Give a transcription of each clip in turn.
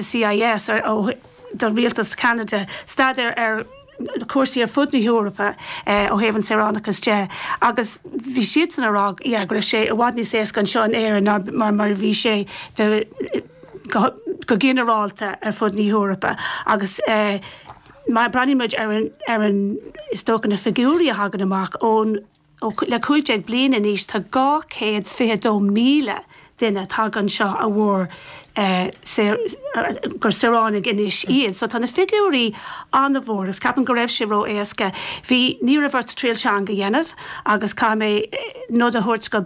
CIS do Rialtas Cheanada, staidéar ar chúrsaí ar fud na hEorpa ó thaobh an saoránachas de, agus bhí siadsan ag rá, yeah, go raibh sé i bhfad níos éasca anseo in Éirinn ná mar a bhí sé go ginearálta ar fud na hEorpa. Agus má breathnaímid ar an, is dócha, na figiúirí a thagann amach ón. le 15 bliain anois tá 222,000 duine tagtha anseo gur saoránaigh anois iad. So tá na figiúirí an-mhór agus ceapaim go raibh sé ró-éasca, bhí, ní raibh ort triail teanga a dhéanamh agus caithfidh mé nod a thabhairt do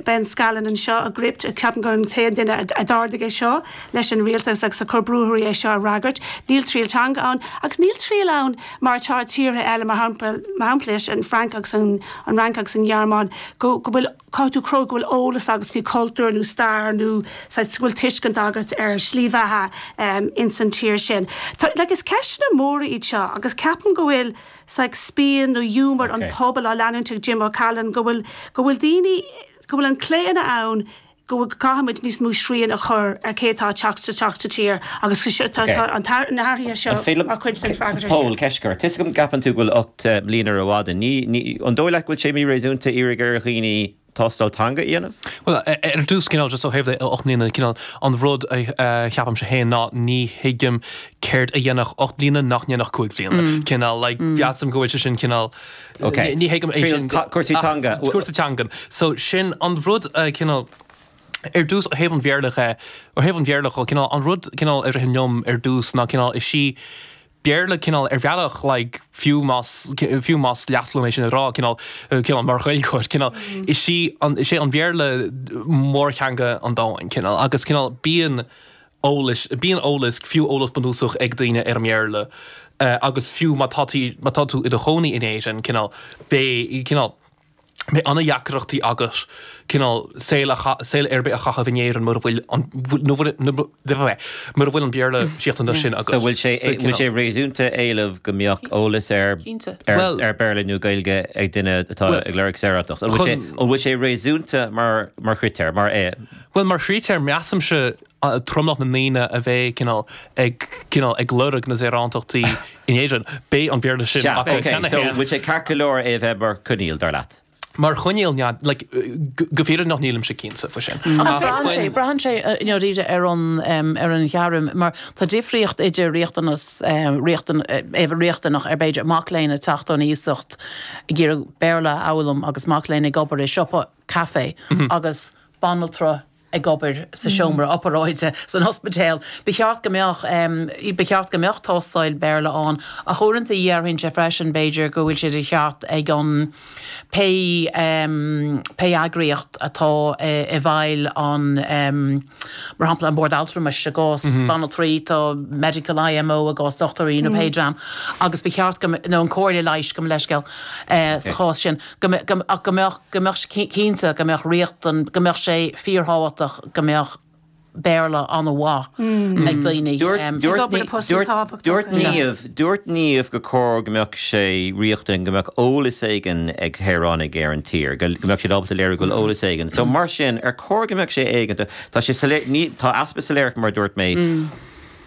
Ben Scallan anseo ag Gript, ceapaim gurb é an t-aon duine a d'ardaigh é seo leis an rialtas agus a chur brú orthu é seo a fhreagairt, níl triail teanga ann agus níl triail ann, mar atá i tíortha eile, mar shampla leis an bhFrainc agus an Fhrainc agus an Ghearmáin, go bhfuil, caithfidh tú cruthú go bhfuil eolas agat faoi chultúr nó stair nó saghas, go bhfuil tuiscint agat ar shlí bheatha ins an tír sin. Tá, like, is ceisteanna móra iad seo agus ceapaim go bhfuil saghas spion nó giúmar an phobail á leanúint ag Jim O'Callaghan, go bhfuil, go bhfuil daoine, go bhfuil an claonadh ann go gcaithfimid níos mó srian a chur ar cé atá ag teacht isteach sa tír agus tá na hathruithe seo mar chuid den fhreagairt air sin. Pól, ceist agat. Tá 'fhios agam go gceapann tú go bhfuil ocht mbliana rófhada. An dóigh leat go bhfuil sé míréasúnta iarraidh ar dhaoine tástáil teanga a dhéanamh? Bhuel, ar dtús, cineál just ó thaobh le ocht mbliana, cineál an rud a cheapaimse féin ná ní thuigim céard a dhéanfadh ocht mbliana nach ndéanfadh cúig bhliana. Cineál like measaim go bhfuil sé sin cineál, Ok. Ní thuigim é sin. Triail cúrsaí teanga. Cúrsa teanga. So sin an rud a cineál, ar dtús ó thaobh an Bhéarla dhe, ó thaobh an Bhéarla dho, cineál an rud cineál a rith liom ar dtús ná cineál is í Béarla cineál ar bhealach like fiú más fiú más leasc liom é sin a rá cineál cineál mar Ghaeilgeoir cineál is í an is é an Bhéarla mórtheanga an domhain cineál agus cineál bíonn eolais. Bíonn eolas, fiú eolas bunúsach, ag daoine ar an mBéarla agus fiú má tá tú, má tá tú i do chónaí in Éirinn, cineál, beidh, cineál, beidh an-deacrachtaí agat, cineál, saol a, saol ar bith a chaitheamh in Éirinn mura bhfuil an, mura bhfuil an Béarla sin agat. So bhfuil sé, bhfuil sé réasúnta éileamh go mbeadh eolas ar, ar Béarla nó Gaeilge ag duine atá ag lorg saoránacht? An bhfuil sé, an bhfuil sé réasúnta mar, mar chritéar, mar é? Bhuel, mar chritéar, measaimse tromlach na ndaoine a bheidh, cineál, ag, cineál, ag lorg na saoránachta in Éirinn, beidh an Béarla sin acu cheana féin. Sea, ok, so bhfuil sé ceart go leor é a bheith mar choinníoll, dar leat? Mar choinníoll, like, go, go fírinneach nílimse cinnte faoi sin. Ach braitheann sé, braitheann sé, you know, right, ar an, em, ar an ghairm, mar tá difríocht idir riachtanas, eh, riachtan, eh, a bheadh riachtanach ar, b'fhéidir, mac léinn ag teacht ón iasacht ag iarraidh Béarla a fhoghlaim agus mac léinn ag obair i siopa, caife agus banaltra ag obair sa seomra oparáide san ospidéal. Ba cheart go mbeadh, ba cheart go mbeadh tástáil Béarla ann ach uaireanta déarfainnse freisin b'fhéidir go bhfuil sé de cheart ag an, pé, pé eagraíocht atá i bhfeighil an, mar shampla, an Bord Altramais i gcás banaltraí, an Medical IMO i gcás dochtúirí nó pé dream agus ba cheart go, nó an Comhairle Leighis, gabh mo leithscéal, sa chás sin. go mbeadh, go mbeadh, cinnte, go mbeadh riachtan, go mbeadh sé fíorthábhachtach go mbeadh Béarla an-mhaith ag daoine. Dúirt Niamh gur chóir go mbeadh sé riachtanach go mbeadh eolas éigin ag saoránaigh ar an tír, go mbeadh siad ábalta a léiriú go bhfuil eolas éigin. So mar sin, ar chóir go mbeadh sé éigeantach, tá sé soiléir, ní, tá easpa soiléireachta mar a dúirt mé,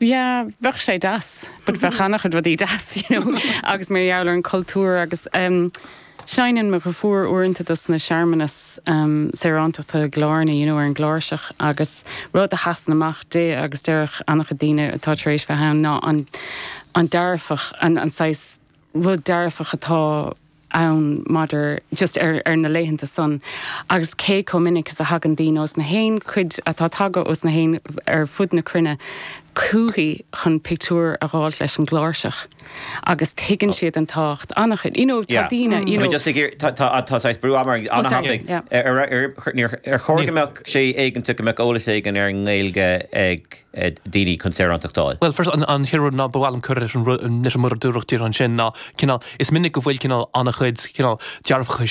yeah bheadh sé deas but bheadh ana-chuid rudaí deas you know agus mar gheall ar an chultúr agus em seinneann mo dheirfiúr uaireanta dos na searmanais em saoránachta i gCill Airne you know ar an gcláirseach agus rud a sheasann amach di agus deireann ana-chuid daoine atá tar éis bheith ann ná an an dearfach an an saghas rud dearfach atá ann maidir just ar, ar na laethanta san, agus cé chomh minic is a thagann daoine os na haon chuid, atá tagtha os na haon ar fud na cruinne, chúithi chun pictiúr a dh'fháilt leis an gcláirseach, agus tuigeann siad an tábhacht an-chuid, you know, tá daoine, you know. I mean just ag iarr, tá, tá, tá saghas brú ama ar, ana thapaidh, ar, ar, ar, ar chóir go mbeadh sé éigeantach go mbeadh eolas éigin ar an nGaeilge ag. daoine chun saoránacht a fháil. Bhuel, first, an chéad rud ná ba mhaith liom cur leis an rud, leis an rud a dúradh, díreach ansin, ná, cineál, is minic go bhfuil, cineál, an-chuid, cineál, dearfacha, sé.